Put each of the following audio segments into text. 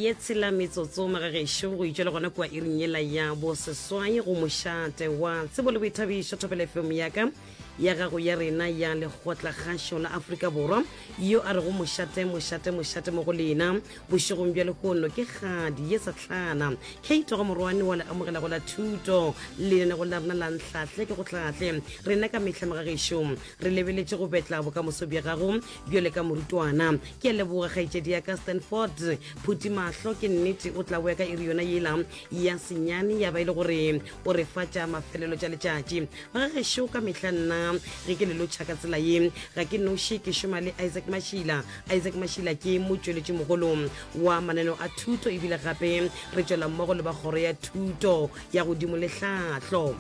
ye tshela metsotso magagešo go itšwa le gona kua iring yela ya boseswai go mošate wa tsebo le boithabišo thopele fm yaka ya gago ya rena ya lekgotla kgašo la aforika borwa yo a rego mošate mošate mošate mo go lena bošegong bja lehono ke kgadi ye satlhana kate go morwane wa le amogelago la thuto lenanego la rena la ntlhahle ke go tlhahle rena ka mehla magagešong re lebeletše go betla bokamoso bja gago Bjole ka morutwana. Ke a leboga kgaetšedi ya ka Stanford. Phuti mahlo ke nnete o tla boya ka iri yona yela ya senyane ya ba e le gore o re fa tša mafelelo tša letšatši. Ga gešo ka mehla nna ge ke le lotšha ka tsela ye ga ke noši ke šoma le Isaac Mashila. Isaac Mashila ke motšweletši mogolo wa mananeo a thuto ebile gape re tšwela mmogo le ba kgoro ya thuto ya godimo le hlahlo.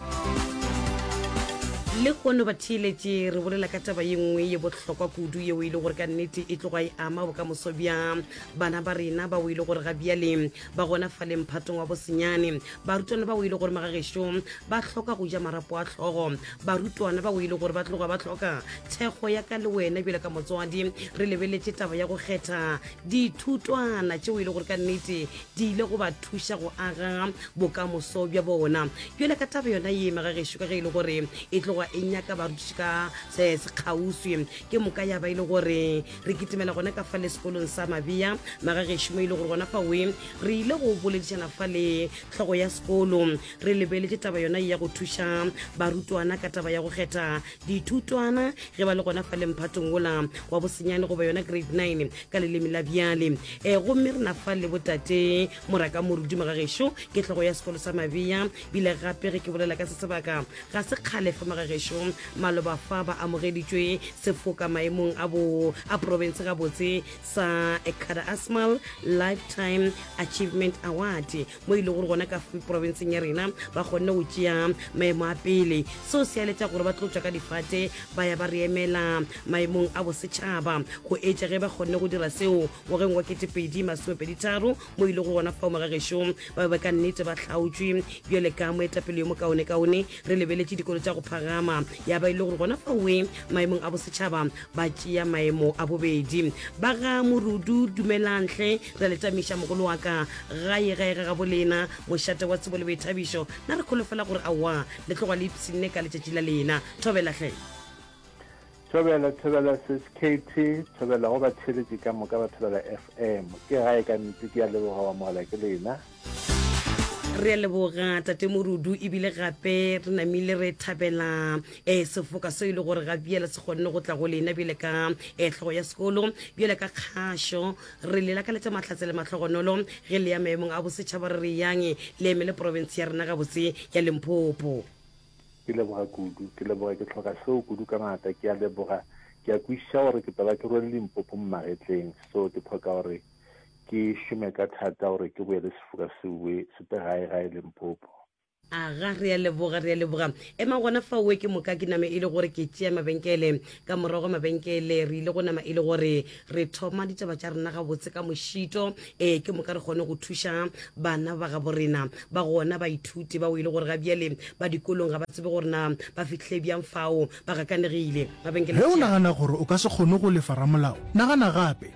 Lehono batheeletši re bolela ka taba ye nngwe ye bohlokwa kudu yeo e le gore ka nnete e tloga e ama bokamoso bja bana ba rena bao e le gore ga bjale ba gona fa lemphatong wa bosenyane barutwana bao e le gore magagešo ba hloka go ja marapo a tlhogo barutwana bao e le gore ba tloga ba hloka thekgo ya ka le wena bjale ka motswadi re lebeletše taba ya go kgetha dithutwana tšeo e le gore ka nnete di ile go ba thuša go aga bokamoso bja bona bjale ka taba yona ye mega gešo ka ge e le gore e tloga e nyaka barutiši ka se se kgauswi ke moka ya ba e le gore re kitimela gona ka fa le sekolong sa mabea mega gešo mo e le gore gona fa we re ile go boledišana fa le tlhogo ya sekolo re lebeletše taba yona ye ya go thuša barutwana ka taba ya go kgetha dithutwana ge ba le gona fa lemphatong wola wa bosenyane goba yona grade 9 ka leleme la bjale e eh, gomme re na fa le botate moraka morudumo ga gešo ke tlhogo ya sekolo sa mabeya bile gape ge ke bolela ka se sebaka ga se kgale fa maga gešo maloba fa ba amogeditšwe sefoka maemong a bo a province ga botse sa ekada asmal lifetime achievement award mo e le gore gona ka porofenseng ya rena ba kgonne go tšea maemo a pele seo se aletša gore ba tlo tswa ka difate ba ya ba re emela maemong a bosetšhaba go etša ge ba kgonne go dira seo ngwageng wa ketepedi masomepeditharo mo e le gore gona fao morageso ba be ba ka nnete ba tlhaotswe bjale ka moetapele yo mokaonekaone re lebeletše dikolo tša go phagama ya ba e le gore gona faoe maemong a bosetšhaba ba tšea maemo a bobedi ba ga morudu dumelantle Re le tamiša mogolo wa ka gae gae ga gabo lena, mošate wa tsebo le boithabišo. Na re kholofela gore aowa le tloga le ipshinne ka letšatši la lena. Thobela hle. Thobela, thobela Sis Katie, thobela go batheeletši ka moka ba Thobela FM. Ke gae ka nnete, ke a leboga go amogelwa ke lena. re a leboga tate morudu ebile gape re namile re thabela um sefoka seo e le gore ga bjela se kgonne go tla go lena bjele ka um eh, tlhogo ya sekolo bjele ka kgašo re le lakaletša mahlatse le matlhogonolo ge le ya maemong a bosetšhaba re re yang le emele porofense ya rena gabotse ya lemphopo ke leboga kudu ke leboga ke tlhoka seo kudu ka ngata ke a leboga ke a kwešiša gore ke taba ke rwele limpopo mmagetleng so ke tlhoka gore ke šome ka thata gore ke boele sefoka se boe se te gae gae lempopo. Aga, re a leboga, re a leboga. Emang gona faowe ke moka ke name e le gore ke tšea mabenkele. Ka morago ga mabenkele re ile go nama e le gore re thoma ditaba tša rena gabotse ka mošito. Ee, ke moka re kgone go thuša bana ba gabo rena ba gona, baithuti bao e le gore ga bjale ba dikolong ga ba tsebe gore na ba fihlile bjang fao. Ba gakanegile. Mabenkele Ge o tšea. nagana gore o ka se kgone go lefa ramolao, nagana gape.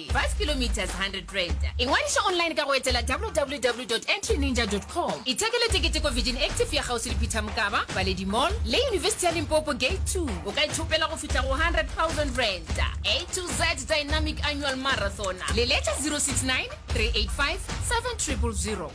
Moswapele, Bus Kilometres, R100. Ingwadiša online ka go etela www dot entryninja dot com. Ithekele tekete ko Virgin Active ya kgauswi le Peter Mokaba, Baledi Mall, le Yunibesithi ya Limpopo Gate Two. O ka ithopela go fihla go R100,000. A to Z Dynamic Annual Marathon. Leletša 069 385 7000.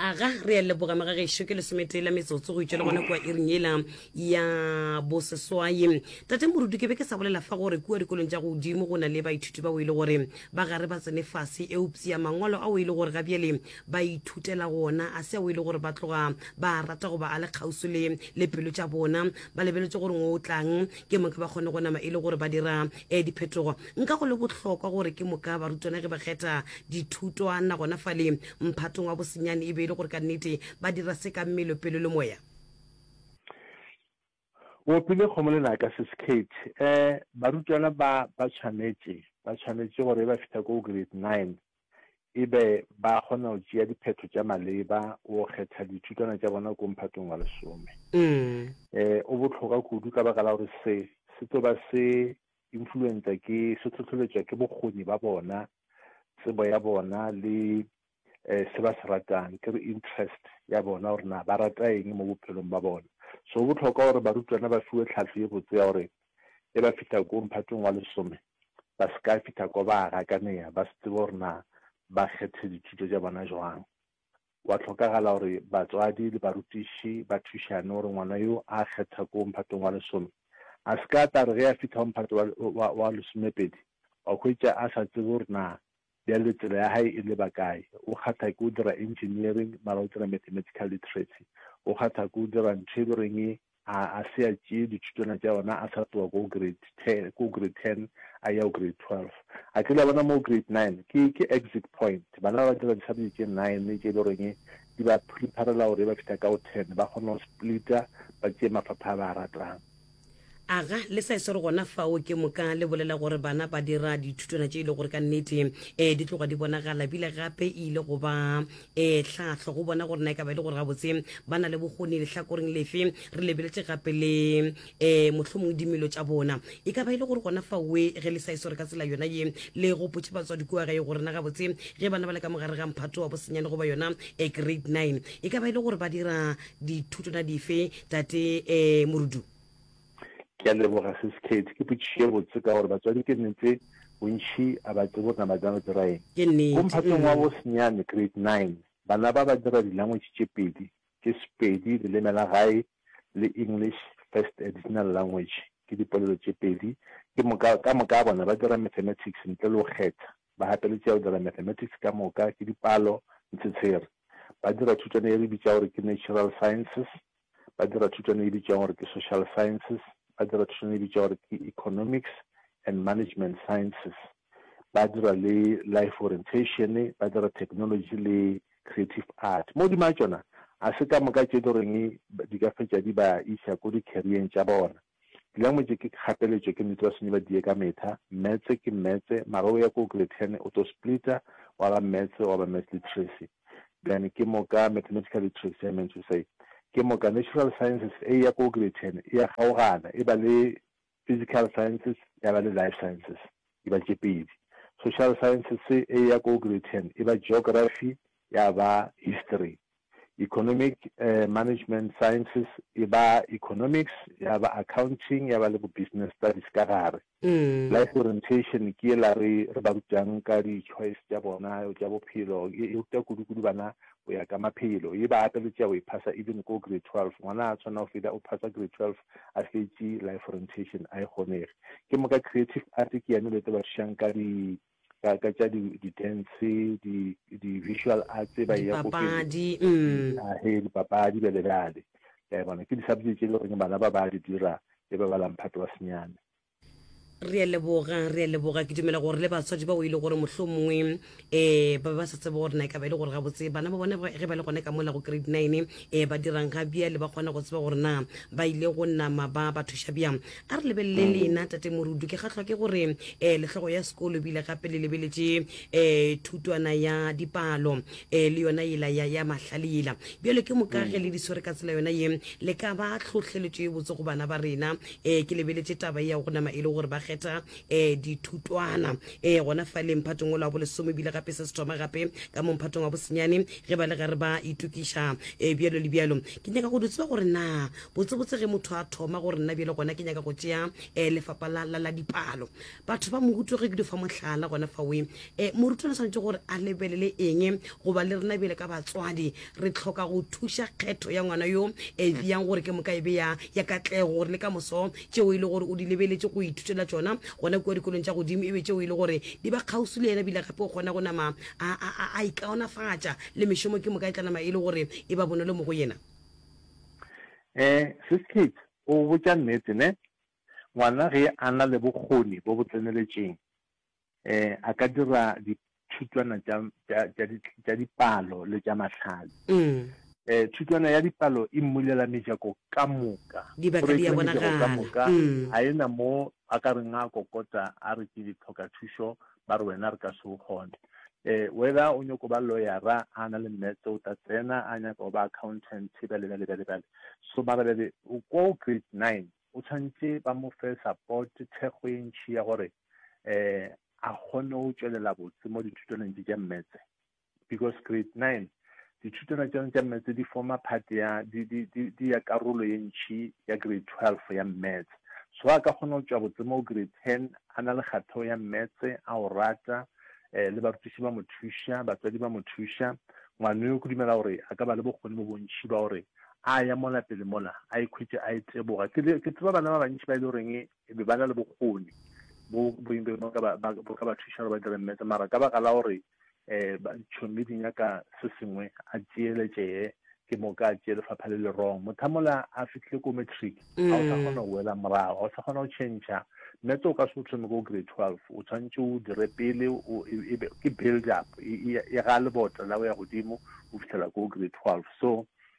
aga re a leboga magagešo ke lesometee la metsotso go itšwa le gona kua iring ela ya boseswai tate morudu ke be ke sa bolela fa gore kua dikolong tša godimo go na le baithuti bao e le gore ba gare ba tsene fase eupsia mangwalo ao e le gore ga bjale ba ithutela gona a se ao e le gore ba tloga ba rata goba a le kgauso le le pelo tša bona ba lebeletse gore ngo o tlang ke mong ba kgone go nama e le gore ba dira um diphetogo nka go le bohlokwa gore ke moka barutwana ge ba kgetha dithutwana gona fale mphatong wa bosenyane e be e le gore ka nnete ba dira se ka mmelo pelo le moya o opile kgomo lenaka se skate um eh, barutwana ba ba tshwanetše ba tshwanetše gore e ba fihla ko grade nine e be ba kgona go tšea diphetho tša maleba go kgetha dithutwana tša bona ko mphatong wa lesome. E o botlhoka kudu ka baka la gore se se tlo ba se influenza ke se tlhotlheletswa ke bokgoni ba bona, tsebo ya bona le um se ba se ratang ke re interest ya bona gore na ba rata eng mo bophelong ba bona. So go botlhoka gore barutwana ba fiwe tlhahlo ye botse ya gore e ba fihla ko mphatong wa lesome ba se ka fihla kwa ba gakanea ba se tsebe gore na ba kgethe dithuto tša bona jwang. Gwa hlokagala gore batswadi le barutiši ba thušane gore ngwana yo a kgetha ko mphatong wa lesome a se ka a tla re ge a fihla go mphato wa, wa, wa lesomepedi a hwetša a sa tsebe gore na Bjale tsela ya hae e leba kae? O kgatha ke go dira engineering mara o tsena mathematical literacy. O kgatha ke go dira ntho e le goreng e a a se a tšee dithutwana tša yona a sa tloga ko grade ten ko grade ten a ya go grade twelve. A ke le a bona mo grade nine ke ke exit point. Bana ba ba dira di-subject tše nine tše e le goreng e di ba preparela gore ge ba fihla ka go ten ba kgone go splitter ba tšee mafapha a ba a ratang. Aga, le sa e swere gona fao ke moka le bolela gore bana ba dira dithutwana tše e le gore ka nnete um di tloga di bonagala bile gape e ile go ba um tlhahlo go bona gore na e ka ba e le gore gabotse ba na le bokgoni lehlakoreng lefe re lebeletše gape le um mohlomong dimelo tša bona e ka ba e le gore gona faoe ge le sa e swere ka tsela yona ye le gopotše batswadi kua gae gore na gabotse ge bana ba le ka mogare ga mphato wa bosenyane goba yona um grade nine e ka ba e le gore ba dira dithuto na dife tate um morudu ke a leboga sis kate ke potšišo ye botse ka gore batswadi ke nnete bontšhi a ba tsebo gore na ba tla go dira eng ke nnete ko mphatong wa mm. bosenyane grade nine bana ba ba dira dilangwetši tše pedi ke sepedi leleme la gae le english first additional language ke dipolelo tše pedi ke moka ka moka bona ba dira mathematics ntle le go kgetha Ba gapeletšea go dira mathematics ka moka ke dipalo le tshetshere. Ba dira thutwana ye re bitšago gore ke natural sciences, ba dira thutwana ye bitšwago gore ke social sciences, ba dira thutwana ye bitšwago gore ke economics and management sciences, ba dira le life orientation, ba dira technology le creative art. Mo dima tšona a se ka moka tše e le goreng di ka fetša di ba iša ko di-career-eng tša bona. Dula mo tše ke kgapeletšo ke nnete ba swanyi ba diye ka metha, metse ke metse mara o ya ko grade ten o to splita wa ba metse wa ba maths literacy then ke moka mathematical literacy I meant to say ke moka natural sciences e ya ko grade ten e ya kgaogana e ba le physical sciences ya ba le life sciences e ba tše pedi social sciences e ya ko grade ten e ba geography ya ba history Economic Management Sciences e ba Economics, ya ba Accounting, ya ba le bo Business Studies ka gare. Life Orientation ke yela re re ba rutang ka di choice tša bona tša bophelo, e e ruta kudu kudu bana go ya ka maphelo. E ba gape le tša go e phasa even ko grade 12, ngwana a tshwanela go feta o phasa grade 12 a fetše Life Orientation a e kgonege. Ke moka Creative Art ke yane e le tlo ba thušang ka di ka ka tša di-dance di-visual di arts ba ya kopedi mm. ah, he dipapadi bjale bjale ka e bona ke di-subject tše e le goreng bana ba ba di dira e ba ba lamphato wa senyane re a leboga re a leboga ke dumela gore le batswadi bao e le gore motlho mongwe um eh, ba ba sa tsebe gore na e ka ba e le gore gabotse bana ba bone ge ba le gone ka mola go grade nine um ba dirang ga bjale ba kgona go tseba gore na ba ile go nama ba ba thuša bjang a re lebelele mm. lena tate morudu ke gatlhwa ke gore um eh, letlhogo ya sekolo bile gape le lebeletse um eh, thutwana ya dipalo um le yona ela ya, ya mahlale ela bjale ke mokage mm. le di swere ka tsela yona ye le ka ba tlhotlheletso e botse go bana ba rena um ke lebeletse taba e ya go nama e le gore ba kgetha um dithutwana um gona fa le mphatong o la bolesome bile gape se se thoma gape ka mo mphatong wa bosenyane ge ba le ga re ba itokiša um bjalo le bjalo ke nyaka go di tseba gore na botsebotse ge motho a thoma gore nna bjele gona ke nyaka go tšea um eh, lefapa la, la, la dipalo batho ba mohuto ge ke di fa mohlala gona fawe um eh, morutwana tshwanetse gore a lebelele eng goba le rena bjele ka batswadi re tlhoka go thuša kgetho ya ngwana yo e bjang gore ke moka e be ya ya katlego gore le ka moso tšeo e le gore o di lebeletse go ithutela tsona gona kua dikolong tša godimo e be tšeo e le gore di ba kgauswi le yena bile gape o kgona go nama a ikaonafatša le mešomo ke moka e tla nama e le gore e ba bonolo mo go yena Eh, Sis Kate, o botša nnete, ne? Ngwana ge a na le bokgoni bo bo tseneletšeng, eh, a ka dira dithutwana tša, tša, tša di, tša dipalo le tša mahlale. Eh, thutwana ya dipalo e mmulela mejako ka moka. Dibaka di a bonagala. Go rekiwa mejako ka moka, ga e na moo a ka reng a kokota a re ke ditlhokathušo, ba re wena re ka se o kgone eh whether o nyoko ba lawyera a na le metse o ta tsena a nyaka go ba accountant bjale bjale bjale bjale so mara bjale o ko grade nine o tshwanetse ba mo fe support thekgo e ntšhi ya gore eh a kgone go tšwelela botse mo dithutelong tše tša mmetse Because grade nine, dithutwana tša yona tša maths di forma part ya di, di, di, di ya karolo ye ntšhi ya grade twelve ya maths. So a ka kgona go tšwa botse mo grade ten a na le kgatheo ya maths, a o rata, eh, le barutiši ba mo thuša, batswadi ba mo thuša. Ngwana yo ke dumela gore a ka ba le bokgoni bo bontšhi ba gore a ya mola pele mola a ikhwetše a e teboga. Ke, ke tseba bana ba bantši ba e le goreng e be ba na le bokgoni bo bo e leng gore ba bo ka ba thuša gore ba dire mmetse mara ka baka la gore um ba tšhomi di nyaka se sengwe a tšeele tšee ke mo ka tšee lefapha le le wrong motho a mola a fitlhile ko matric ga o sa kgona go wela morago ga o sa kgona go change mmetse o ka se o thome ko grade twelve o tshwanetse o dire pele ke build up e ga lebota la o ya godimo o fitlhela ko grade twelve so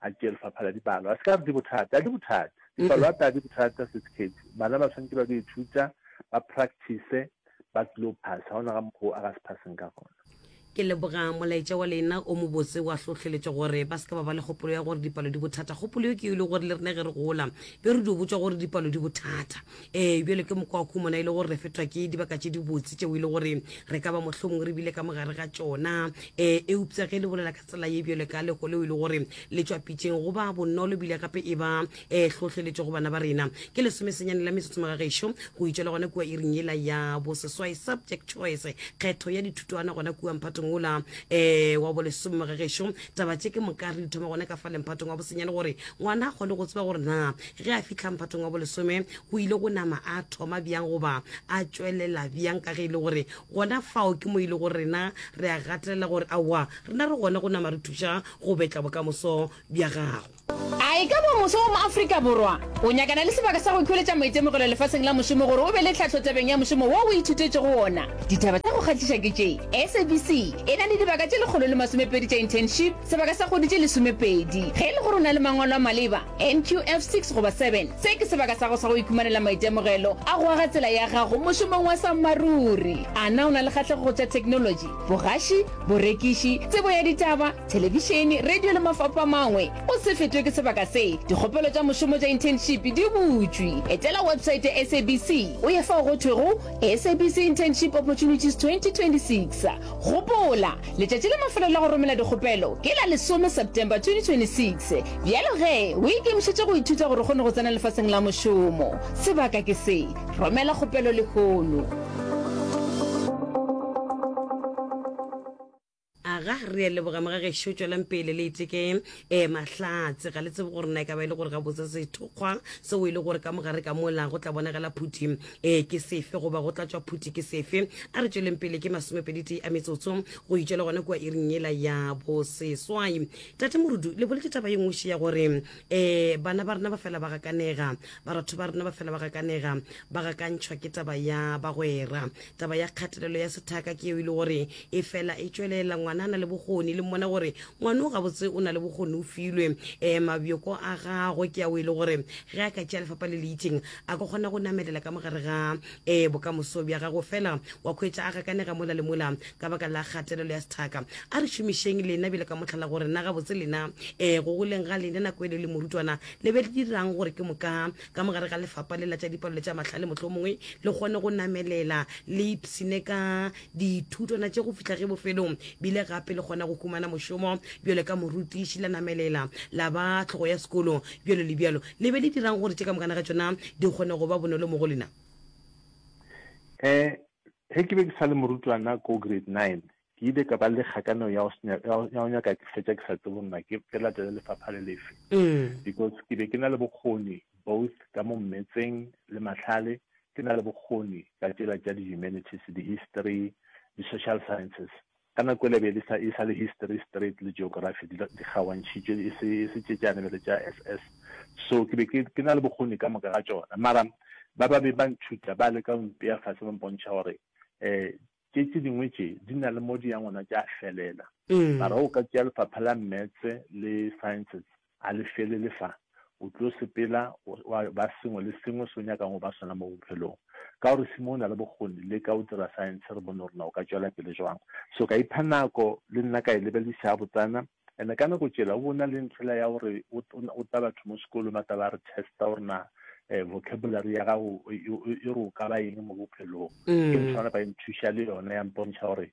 a tšee lefapha la dipalo. A se ka re di bothata, a di bothata. Dipalo a ta di bothata se sekhethi. Bana ba tshwanetse ba di ithuta, ba practice, ba tlilo pass. Ha ona ga mokgo a ga se passeng ka gona. Ke leboga molaetša wa lena o mobotse wa hlohleletšo gore ba se ka ba ba le kgopolo ya gore dipalo di bothata. Kgopolo yo ke yo le gore le rena ge re gola be re dio botšwa gore dipalo di bothata. Ee, bjale ke mokwa wa khumona e le gore re fetwa ke dibaka tše dibotse tšeo e le gore re ka ba mohlomong re bile ka mo gare ga tšona. Ee, eupsa ge le bolela ka Tsela ye bjale ka lego leo e le gore le tšwa pitšeng go ba bonolo bile gape e ba e hlohleletšo go bana ba rena. Ke lesomesenyane la metsotso magagešo go itšwa le gona kua iring yela ya boseswai. Subject choice, kgetho ya dithutwana gona kua mphatong wola um wa bolesome magagešo. Taba tše ke moka re di thoma gona ka fale mphatong wa bosenyane gore ngwana a kgone go tseba gore na ge a fihla mphatong wa bolesome o ile go nama a thoma bjang goba a tšwelela bjang ka ge e le gore Gona fao ke mo e lego rena re a gatelela gore aowa, rena re gona go nama re thuša go betla bokamoso bja gago. A e ka ba mofsa wa mo Afrika Borwa o nyakana le sebaka sa go ikhweletša maitemogelo lefaseng la mošomo gore o be le tlhahlo tabeng ya mošomo wo o ithutetšego wona? Ditaba tša go kgahliša ke tše, SABC e na le dibaka tše lekgolo le masomepedi tša internship, sebaka sa kgwedi tše lesomepedi. Ge e le gore o na le mangwalo a maleba, NQF 6 goba 7. Se ke sebaka sa go sa go ikhumanela maitemogelo a go aga tsela ya gago mošomong wa sammaruri. A na o na le kgahlego go tša theknolotši, bogaši, borekiši, tsebo ya ditaba, thelebišene, radio le mafapho a mangwe? O se fetwe ke sebaka se. Dikgopelo tša mošomo tša internship di butšwe. Etela website ya SABC o ye fao go thwego SABC Internship Opportunities 2026. Gopola! Letšatši la mafelo la go romela dikgopelo ke la lesome September 2026. Bjalo ge o ikemišetše go ithuta gore o kgone go tsena lefaseng la mošomo, sebaka ke se, romela kgopelo lehono. Aga, re ya leboga mogagešo, tšwelang pele le iteke eh, Mahlatse. Ga le tsebe gore na e ka ba e le gore gabotse sethokgwa seo e le gore ka mogare ka mola go tla bonagala phuthi Ee, ke sefe, goba go tlatšwa phuti ke sefe? A re tšweleng pele ke masomepeditee a metsotso go itšwa le gona kua iring yela ya boseswai. Tate Morudu, le boletše taba ye nngwešo ya gore um bana ba rena ba fela ba gakanega, baratho ba rena ba fela ba gakanega, ba gakantšhwa ke taba ya bagwera. Taba ya kgatelelo ya sethaka ke yeo e le gore e fela e tšwelela. Ngwana a na le bokgoni, le mmona gore ngwano gabotse o na le bokgoni, o filwe um mabjoko a gagwe ke ao e le gore ge a ka tšea lefapa le le itšeng a ka kgona go namelela ka mogare ga um bokamoso bja gago fela wa kgwetša a gakanega mola le mola ka baka la kgatelelo ya sethaka a re šomišeng lena bjale ka motlhala gore na gabotse lena um eh, go goleng ga lena nako e le le morutwana le be le dirang gore ke moka ka mogare ga lefapa le la tša dipalelo tša matlhale motlho mongwe le kgone go namelela le ipsine ka dithutwana tše go fitlha ge bofelong bile gape le kgona go humana mošomo bjale ka morutiši la namelela la ba tlhogo ya sekolo bjalo le bjalo Le be le dira'ng gore tše ka mokana ga tšona di kgone go ba bonolo mo go lena? Um Ge ke be ke sa le morutwana ko grade nine, ke ile ka ba le kgakaneo ya go se nya- ya go- ya go nyaka ke fetša ke sa tsebe gore na ke ke latele lefapha le lefe because ke be ke na le bokgoni both ka mo mmetseng le mahlale, ke na le bokgoni ka tšela tša di-humanities, di-history, di-social sciences. Ka nako yela e be e le e sa le History straight le Geography di di kgaoantšhitšwe e se e se tše tšeane bjale tša SS. So ke be ke ke na le bokgoni ka moka ga tšona mara ba ba be ba ntšhuta ba leka go mpea fase ba mpontšha gore um tše tše dingwe tše di na le mo di yang gona tša felela. Mara o ka tšea lefapha la Maths le Sciences A le felele fa. O tlo sepela wa ba sengwe le sengwe se o nyakang go ba sona mo bophelong. Ka gore Simo o na le bokgoni, leka o dira saense re bone gore na o ka tšwela pele jwang. So ka ipha nako le nna ka e lebelisa gabotsana. And ka nako tšela o bo o na le ntlhela ya gore o o ta batho mo sekolong ba tla ba re testa gore na vocabulary ya gago e re o ka ba eng mo bophelong. Ke ntho ya gore ba nthuša le yona ya mpontšha gore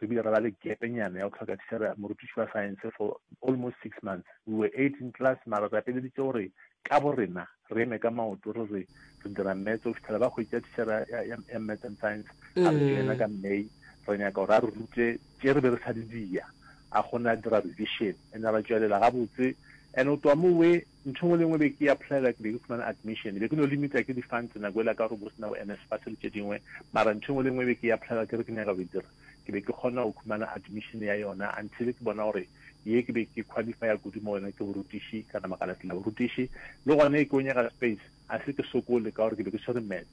re bile re ba le gepenyana ya go tlhoka tshera morutiši wa science for almost six months we were eight in class mara re apeleditše gore ka bo rena re eme ka maoto re re re dira maths go fitlhela ba hwetša tshera ya maths and science a re joina mm. ka may re nyaka gore a re rute tše re be re sa di dia a kgone a dira revision ene ra tšwelela gabotse and o twa mo we Ntho engwe le engwe be ke e applyela ke be ke fumana admission, be ke no limita ke di funds nako ela ka gore bo sena bo NSFAS le tše dingwe, mara ntho engwe le engwe be ke e applyela ke re ke nyaka go e dira ke be ke kgona go khumana admission ya yona until ke bona gore ye ke be ke qualifya kudu mo go yona ke borutiši, ka nama ka latela borutiši le gona ke o nyaka space a se ke sokole ka gore ke be ke swere maths.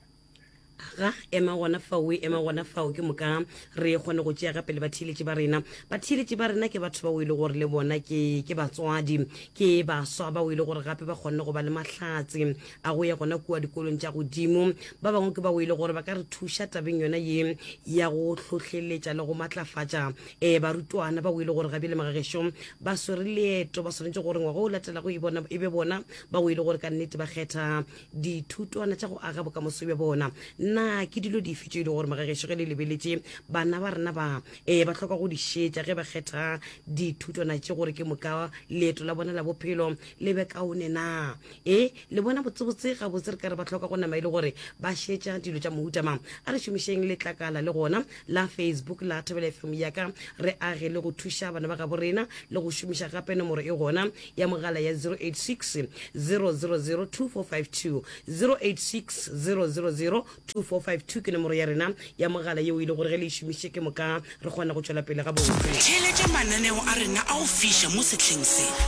ga ema gona fao e ema gona fao ke moka re kgone go tšea gape le batheeletši ba rena batheeletši ba rena ke batho bao e le gore le bona ke ke batswadi ke baswa bao e le gore gape ba kgonne go ba le mahlatse a go ya gona kua dikolong tša godimo ba bangwe ke bao e le gore ba ka re thuša tabeng yona ye ya go hlohleletša le go matlafatša um eh, barutwana bao e le gore ga bjale magagešo ba swere leeto ba swanetše gore ngwaga o latelago e, e be bona bao e le gore ka nnete ba kgetha dithutwana tša go aga bokamoso bja bona na ke dilo dife tše e le gore magagešo ge le lebeletše bana ba rena ba um ba tlhoka go di šetša ge ba kgetha dithutwana tše gore ke moka leeto la bona la bophelo le be kaone na e le bona botsebotse ga botse re ka re ba tlhoka go nama e le gore ba šetša dilo tša mohutama a re šomišeng letlakala le gona la facebook la thobela fm yaka re age le go thuša bana ba gabo rena le go šomiša gape nomoro e gona ya mogala ya 0860002452 ke nomoro ya rena ya mogala yeo e le gore ge le e šomiše ke moka re kgona go tšwela pele gabotse Theeletša mananeo a rena a go fiša mo sehleng se.